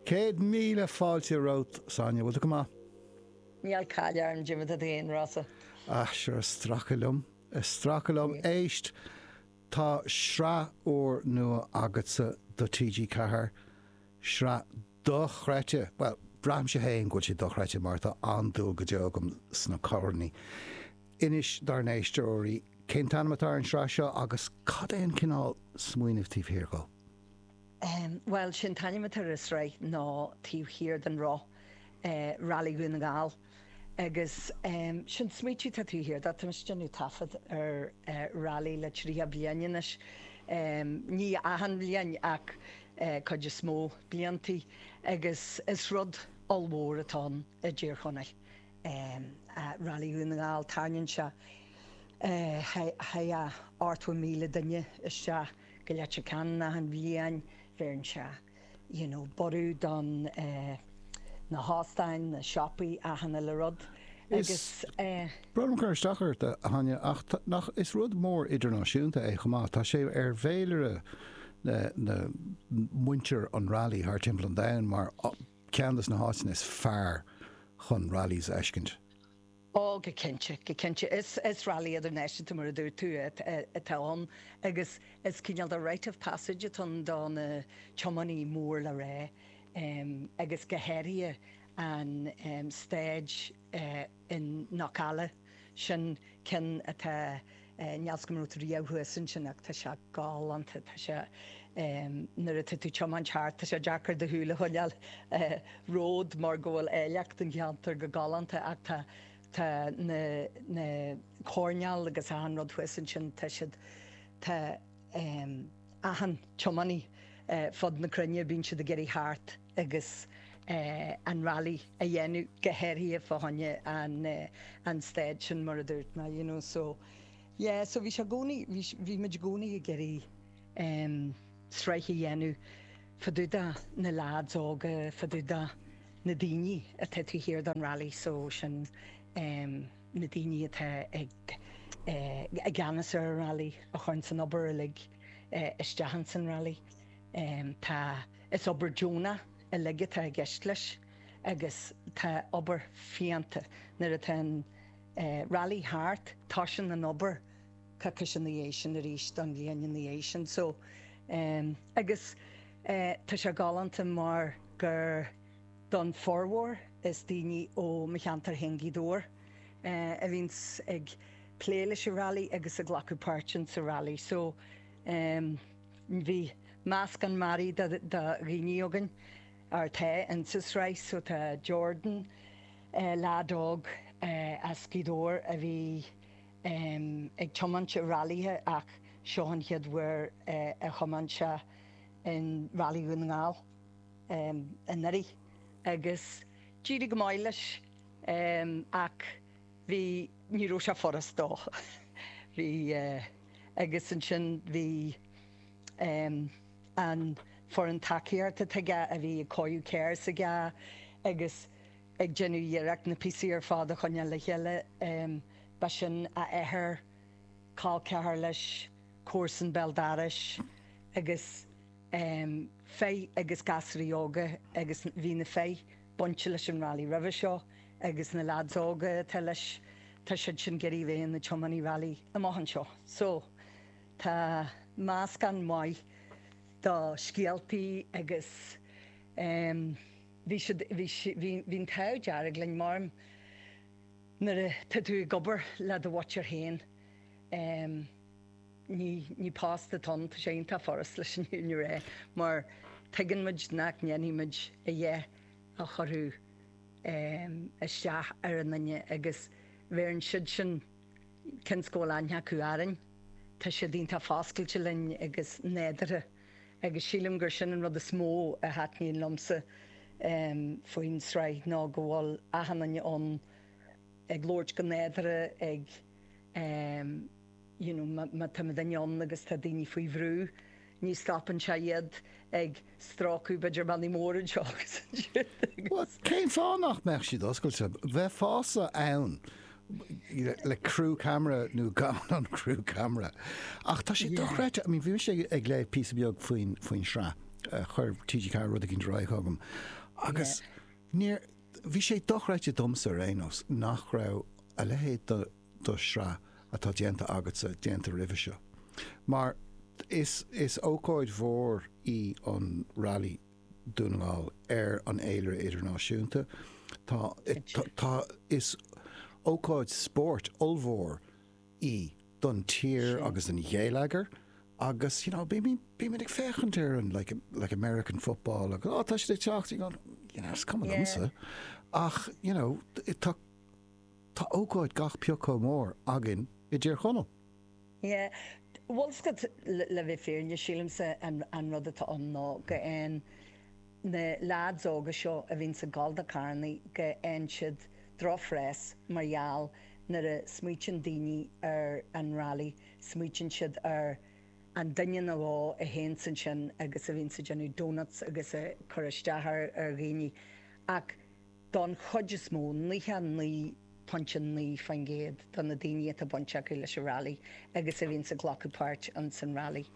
Céad míle fáilte romhat, Sonia. Bhfuil tú go maith? Níl caill orm, Jimmy, tá tú den rása. Ah, sure, is stracadh liom, is stracadh liom. Éist, tá sraith úr nua agatsa do TG Ceathair, sraith dochreidte, bhuel, braithimse fhéin go bhfuil sé dochreidte mar tá an-dúil go deo agam sna coirní. Inis dár n-éisteoirí cén t-ainm atá ar an tsraith seo agus cad é an cineál smaoinimh taobh thiar dhó? Bhuel, sé an t-ainm atá ar an sraith ná Taobh Thiar den Roth, Rally Dhún na nGall. Agus sé an smaoitiú atá taobh thiar de, tá muid ag déanamh taifead ar rally le triocha bliain anois, ní achan bhliain ach cuid is mó bliantaí agus is rud ollmhór atá ann i dTír Chonaill Rally Dhún na nGall. Tarraingíonn sé ochtó míle duine isteach. go Leitir Ceanainn achan bhliain bheireann sé you know borradh don eh na hóstáin na siopaí achan uile rud agus Is eh. breá liom cur isteach ort a Sonia ach tá nach is rud mór idirnáisiúnta é chomh maith tá sé ar fhéilire na na muintir an rally thar timpeall an domhain mar cheann dos na háiteanna is fearr chun rallies a fheiscint. Ó, go cinnte, go cinnte. Is rally idirnáisiúnta, mar a dúirt tú, atá ann agus is cineál de rite of passage atá ann do na tiománaí mór le rá agus go háirithe an stage in Knockalla, sin ceann atá. níl fhios agam an raibh tú riamh thuas ansin ach tá sé galánta tá sé nuair atá tú ag tiomáint thart tá sé deacair do shúil a choinneáil ar an ród mar go bhfuil áilleacht an cheantair go galánta ach tá tá na na coirnéil agus achan rud thuas ansin tá siad tá achan tiománaí ar fud na cruinne, bíonn siad ag iarraidh theacht agus an rally a dhéanamh, go háirithe fá choinne an staid sin mar a dúirt mé, you know so yeah, so bhí sé i gcónaí, bhí muid i gcónaí ag iarraidh sraith a dhéanamh fadúda na leaids óga, fadúda na daoine atá taobh thiar don rally so sin. na daoine atá i gceannas ar an Railí a chuireann an obair uilig isteach ins an Railí. Tá, is obair deonach uilig atá i gceist leis agus tá obair fiánta, nuair atá an Railí thart tosaíonn an obair coicís ina dhiaidh sin arís don bhliain ina dhiaidh sin so agus tá sé galánta mar gur, Don formhór is daoine ó mo cheantar féin Gaoth Dobhair a bhíonns ag plé leis an rally agus ag glacadh páirt in sa rally so abair bhí meascán mearaí de dhaoine againn atá in sa sraith so tá Jordan leaid óg as Gaoth Dobhair a bhí ag tiomáint i rallythe ach seo an chéad uair a thiomáin sé in rally Dhún na nGall. anuraidh agus d'éirigh go maith leis ach bhí, ní raibh sé furast dó. Bhí, agus ansin bhí an foireann tacaíochta atá aige a bhí ag cóiriú gears aige agus ag déanamh iarracht na píosaí ar fad a choinneáil le chéile. Ba sin a athair, col ceathar leis, comharsan béal dorais agus. Fay agus gasraí óga agus bhí na Fay bainte leis an railí roimhe seo agus na leads óga atá leis tá siad sin ag iarraidh a bheith ina dtiománaí railí amach anseo. So tá meascán maith do scéaltaí agus em bhí siad bhí bhí bhí an t-ádh dearg linn mar nuair atá tú ag obair le do mhuintir féin em, Ní ní post atá ann, tá sé iontach furast leis an fhírinne a rá mar tuigeann muid nach ndéanfaidh muid a dhath a chuirfidh ehm isteach ar an nduine agus ar ndóigh siadsan cionn is go bhfuil aithne acu orainn. Tá siad iontach foscailte linn agus nádúrtha agus sílim gur sin an rud is mó a thaitníonn liomsa ehm faoin tsraith ná go bhfuil achan nduine ann ag labhairt go nádúrtha ag ehm you know, má táimid ann agus tá daoine faoi bhrú ní stopann sé iad ag stróiceadh b'fhéidir mionnaí móra anseo agus ansiúd agus. Cén fáth nach mbeadh siad oscailte? Bheadh fearsan le crew camera nó gan an crew camera. Ach tá sé dochreidte, I mean bhí mise ag léamh píosa beag faoin, faoin sraith, chuir TG4 rud éicint ar aghaidh chugam agus níor, bhí sé dochreidte domsa ar aon nós nach raibh a leithéid de, do shraith atá déanta agatsa déanta roimhe seo mar is ócáid mhór í an Rally Dún na nGall ar an fhéilire idirnáisiúnta. Tá tá is ócáid spóirt ollmhór í don tír agus don ghéilleagar agus you know bímíd bímíd ag féachaint ar an like like American football agus oh tá siad ag teacht you know it's coming once ach you know tá Tá ócáid gach pioc chomh mór againn i dTír Chonaill. Yeah, bhuel is é, le bheith fírinneach, sílimse an rud atá ann ná go bhfaigheann na leaids óga seo a bhíonns ag gol do charrannaí, go bhfaigheann siad drochphreas mar gheall nuair a smaoitíonn daoine ar an rally, smaoitíonn siad ar an duine nó dhó a théanns ansin agus a bhíonns ag déanamh doughnuts agus ag cur isteach ar dhaoine ach, Don chuid is mó, 99.9% do na daoine atá baint acu leis an Railí agus a bhíonns ag glacadh páirt ins an Railí,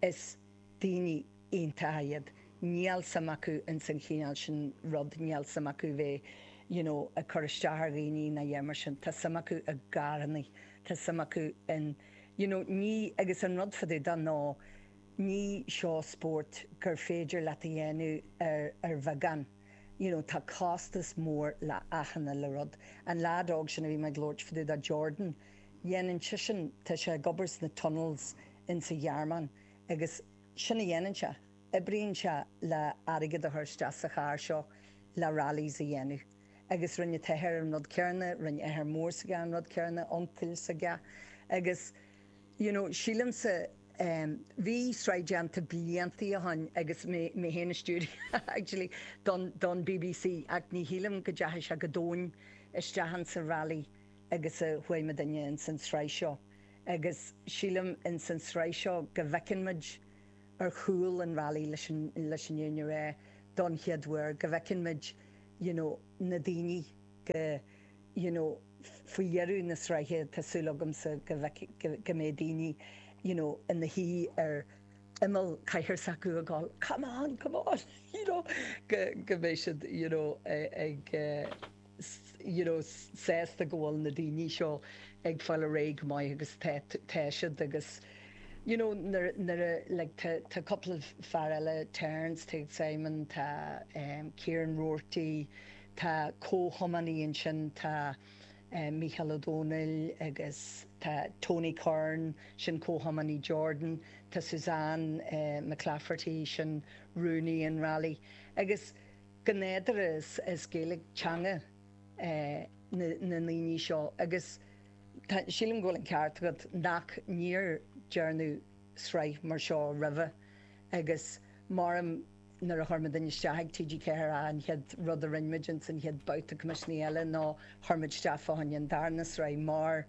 is daoine iontacha iad. Níl suim acu ins an chineál sin rud, níl suim acu bheith you know ag cur isteach ar dhaoine ná a dhath mar sin. Tá suim acu i gcarrannaí, tá suim acu in you know ní, agus an rud fá dtaobh de ná, ní seo spórt gur féidir leat a dhéanamh ar bheagán. you know tá costas mór le achan chineál rud. An lead óg sin a bhí mé ag labhairt fá dtaobh de Jordan dhéanann sisean tá sé ag obair sna tunnels in sa Ghearmáin agus sin a dhéanann sé, oibríonn sé le airgead a chur isteach sa charr seo le rallies a dhéanamh agus rinne an t-athair an rud céarna, rinne athair mór s'aige an rud céarna, uncail s'aige agus. you know sílimse em bhí sraith déanta bliantaí ó shin agus mé féin i stiúideo actually don don bbc ach ní shílim go deachaigh sé go domhain isteach ins a' rally agus cá bhfuair muid daoine ins an sraith seo agus sílim ins an sraith seo go bhfeiceann muid ar chúl an rally leis an leis an aon uair don chéad uair go bhfeiceann muid you know na daoine go you know Faoi dheireadh na sraithe tá súil agamsa go mbeidh daoine you know ina suí ar imeall cathaoir s'acu a gol come on, come on you know go mbeidh siad you know ag you know sásta go bhfuil na daoine seo ag fáil ar aghaidh go maith agus tá siad agus you know nuair a like tá cúpla fear eile Terence tá Simon tá Kieran Roarty Tá comhthiománaí ansin, tá Mícheál Ó Domhnaill agus tá Tony Curran, sin comhthiománaí Jordan, tá Suzanne McClafferty, sin rúnaí an railí. Agus go nádúrtha is Gaeilge teanga na ndaoine seo agus sílim go bhfuil an ceart agat nach níor dearnadh sraith mar seo roimhe agus mar Nuair a chuir muid isteach ag TG4 an chéad rud a rinne muid insan chéad babhta coimisiúin eile ná chuir muid isteach fá choinne an darna sraith mar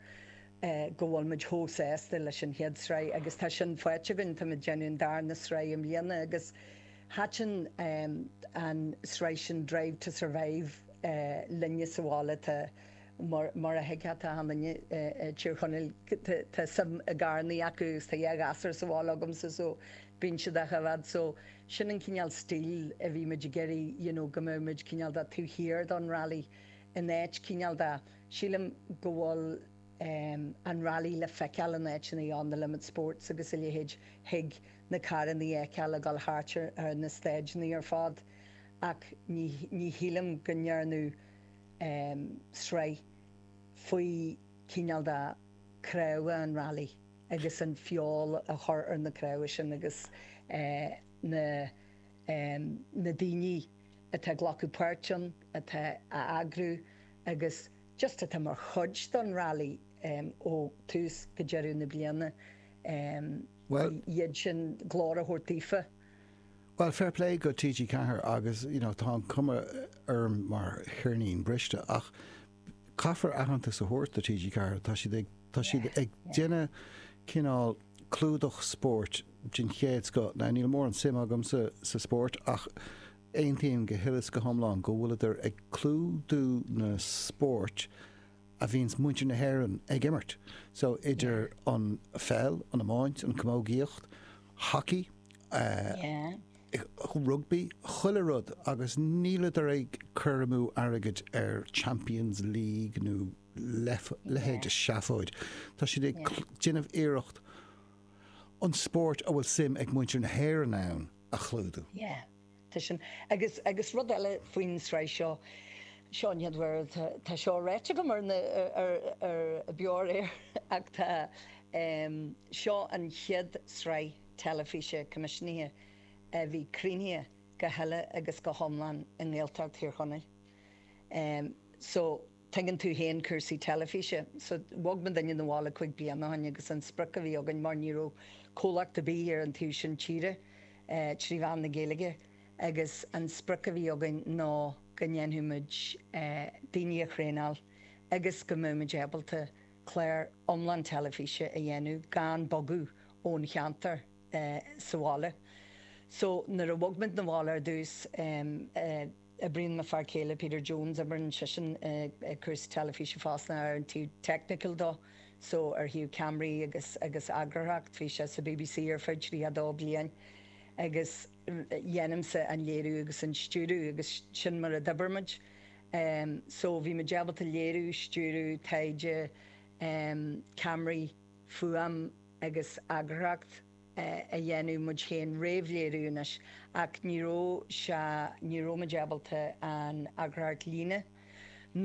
go bhfuil muid chomh sásta leis an chéad sraith agus tá sin faighte againn. Tá muid ag déanamh an darna sraith i mbliana agus thaitin an sraith sin Drive to Survive linne sa bhaile. Tá mar a thuigfeá tá suim linne i dTír Chonaill, tá suim i gcarrannaí acu agus tá dhá ghasúr sa bhaile agamsa so Bíonn siad ag amharc air so sin an cineál stíl a bhí muid ag iarraidh you know go mbeadh muid cineál de ag tabhairt aird don rally in áit cineál de. Sílim go bhfuil ehm an rally le feiceáil in áiteanna on the limit sports agus a leithéid thig na carranna fheiceáil ag dul thart ar na stáideanna ar fad ach ní ní shílim go ndearnadh ehm sraith faoi cineál de chnámha an rally. agus an fheoil a chur ar na cnámha sin agus na na daoine atá ag glacadh páirt ann atá a eagrú agus just atá mar chuid don rally ó tús go deireadh na bliana iad sin glór a thabhairt daofa. Bhuel fair play go TG4 agus you know tá an cuma orm mar cheirnín briste ach caithfear aitheantas a thabhairt do TG4, tá siad ag, tá siad ag déanamh cineál clúdach spóirt den chéad scoth. Now níl mórán suim agam sa, sa spórt, ach aontaím go huile is go hiomlán go bhfuil siad ag clúdú na spóirt a bhíonns muintir na hÉireann ag imirt. So idir an pheil, an iomáint, an camógaíocht, hockey, rugbaí, chuile rud agus níl siad ag cur amú airgid ar Champions League nó leithéid de sheafóid. Tá siad ag déanamh iarracht an spóirt a bhfuil suim ag muintir na hÉireann ann a chlúdú. Tá sin agus agus rud eile faoin tsraith seo seo an chéad uair tá tá seo ráite agam ar an aer ar Beo ar Éigean ach tá em seo an chéad sraith teilifíse coimisiúnaithe a bhí cruthaithe go huile agus go hiomlán i nGaeltacht Thír Chonaill em so Tuigeann tú féin cúrsaí teilifíse. So, bhog muidinne 'na bhaile cúig bliana ó shin agus an sprioc a bhí againn, mar ní raibh comhlacht ar bith ar an taobh sin tíre trí mheán na Gaeilge, agus an sprioc a bhí againn ná go ndéanfadh muid daoine a thraenáil agus go mbeadh muid ábalta clár iomlán teilifíse a dhéanamh gan bogadh ón cheantar sa bhaile. So, nuair a bhog muid 'na bhaile ar dtús, Oibríonn mo fhear céile Peter Jones, oibríonn seisean i cúrsaí teilifíse fosta ar an taobh technical dó, so ar thaobh ceamraí agus agus eagarthóireacht. Bhí sé sa BBC ar feadh 32 bliain agus dhéanaimse an léiriú agus an stiúradh agus sin mar a d'oibrigh muid. Em so bhí muid ábalta léiriú, stiúradh, taighde, em, ceamraí, fuaim agus eagarthóireacht. a dhéanamh muid féin réamhléiriú anois ach ní raibh sé ní raibh muid ábalta an eagarthóireacht líne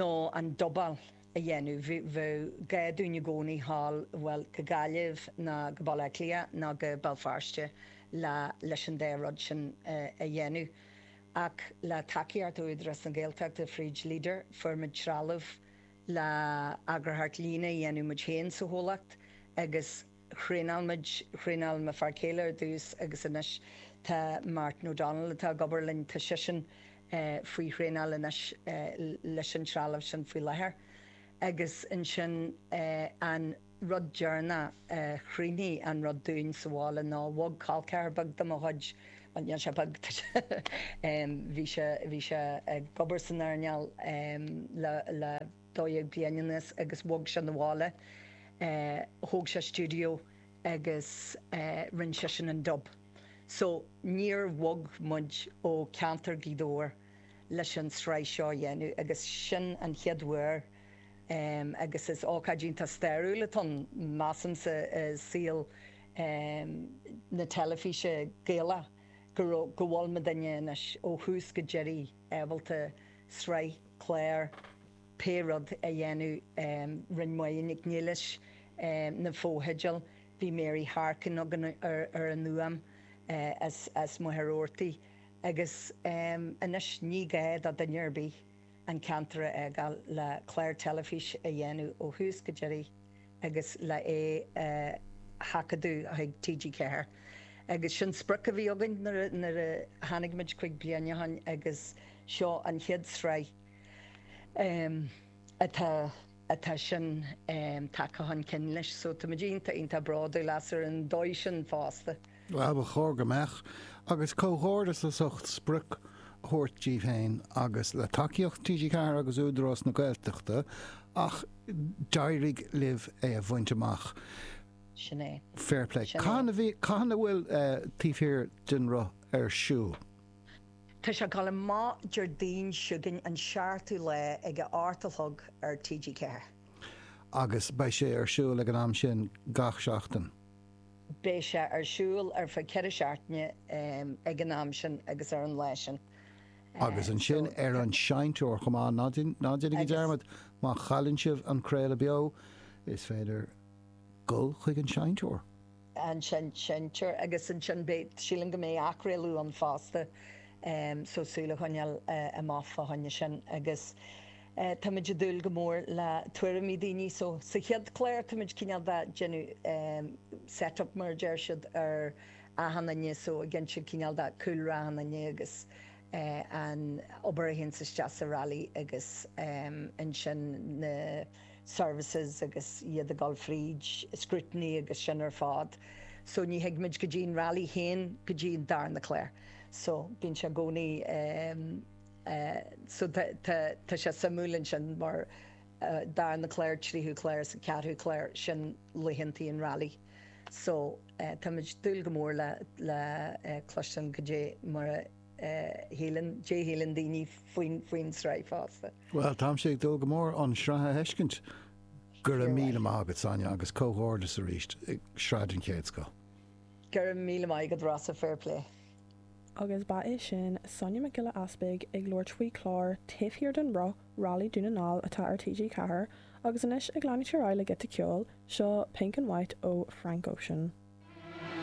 nó an dubáil a dhéanamh bheadh gá dúinn i gcónaí a ghabháil bhuel go Gaillimh ná go Baile Átha Cliath ná go Béal Feirste le leis an dá rud sin a dhéanamh ach le tacaíocht ó Údarás na Gaeltachta fríd Leader fuair muid trealamh le eagarthóireacht líne a dhéanamh muid féin sa chomhlacht agus thraenáil muid, thraenáil mo fhear céile ar dtús agus anois tá Martin O'Donnell atá ag obair linn, tá seisean faoi thraenáil anois leis an trealamh sin faoi láthair. Agus ansin an rud deireanach a chruinnigh an rud dúinn sa bhaile ná bhog col ceathair beag de mo chuid, bhuel níl sé beag, tá sé, bhí sé, bhí sé ag obair san earnáil le, 12 bliain anuas agus bhog sé 'na bhaile. Thóg sé stiúideo agus rinne sé sin an dub. So níor bhog muid ó ceantar Ghaoth Dobhair leis an tsraith seo a dhéanamh agus sin an chéad uair agus is ócáid iontach stairiúil atá ann, measaimse, i saol na teilifíse Gaeilge go bhfuil mo duine anois ó thús go deiridh. ábalta sraith clár pé rud a dhéanamh rinne Máire Nic Niallais na fotheidil bhí Mary Harkin againn ar an fhuaim as Machaire Rabhartaigh agus anois ní gá do duine ar bith an ceantar a fhágáil le clár teilifís a dhéanamh ó thús go deiridh agus le é a sheachadadh chuig TG4. Agus sin sprioc a bhí againn nuair a tháinig muid cúig bliana ó shin agus seo an chéad tsraith atá atá sin tagtha chun cinn leis. So tá muid iontach iontach bródúil as ar an dóigh sin fosta. Ba chóir go mbeadh, agus comhghairdeas as ucht sprioc a thabhairt díbh féin agus le tacaíocht TG4 agus Údarás na Gaeltachta ach d'éirigh libh é a bhaint amach. Sin é. Fair play. Cathain a bhfuil Taobh Thiar den Roth ar siúl? Tá sé ag gabháil amach Déardaoin chugainn an seachtú lá ag a hocht a chlog ar TG4. Agus beidh sé ar siúl ag an am sin gach seachtain. Beidh sé ar siúl ar feadh ceithre seachtainí ag an am sin agus ar an lá sin. Agus ansin ar an seinnteoir chomh maith. Ná déanaigí dearmad, má chailleann sibh an craoladh beo, is féidir dul chuig an seinnteoir. an seinnteoir agus ansin beidh, sílim go mbeidh athchraoladh ann fosta, so súil a choinneáil amach fá choinne sin. Agus. Táimid ag dúil go mór le tuairimí daoine so sa chéad chlár táimid cineál de ag déanamh set up mar a deir siad ar achan nduine so ag insint cineál de cúlra achan nduine agus an obair a théanns isteach sa rally agus ansin na services agus iad ag dul fríd scrutiny agus sin ar fád so ní théimid go dtí an rally féin go dtí an darna clár so bíonn sé i gcónaí Tá sé suimiúil ansin mar darna clár tríú clár is an ceathrú clár sin laethanta an railí so táimid ag dúil go mór le le cloisteán cad é mar a shíleann cad é a shíleann daoine faoin faoin sraith fosta. Bhuel táimse ag dúil go mór an sraith a fheiscint. Go raibh míle maith agat Sonia agus comhghairdeas arís sraith den chéad scoth. Go raibh míle maith agat Rossa, fair play. Agus ba é sin Sonia Nic Giolla Easpaig ag labhairt faoi chlár taobh thiar don roth, Rally Dhún na nGall atá ar TG4, agus anois ag leanúint ar aghaidh le giota ceoil, seo Pink and White ó Frank Ocean.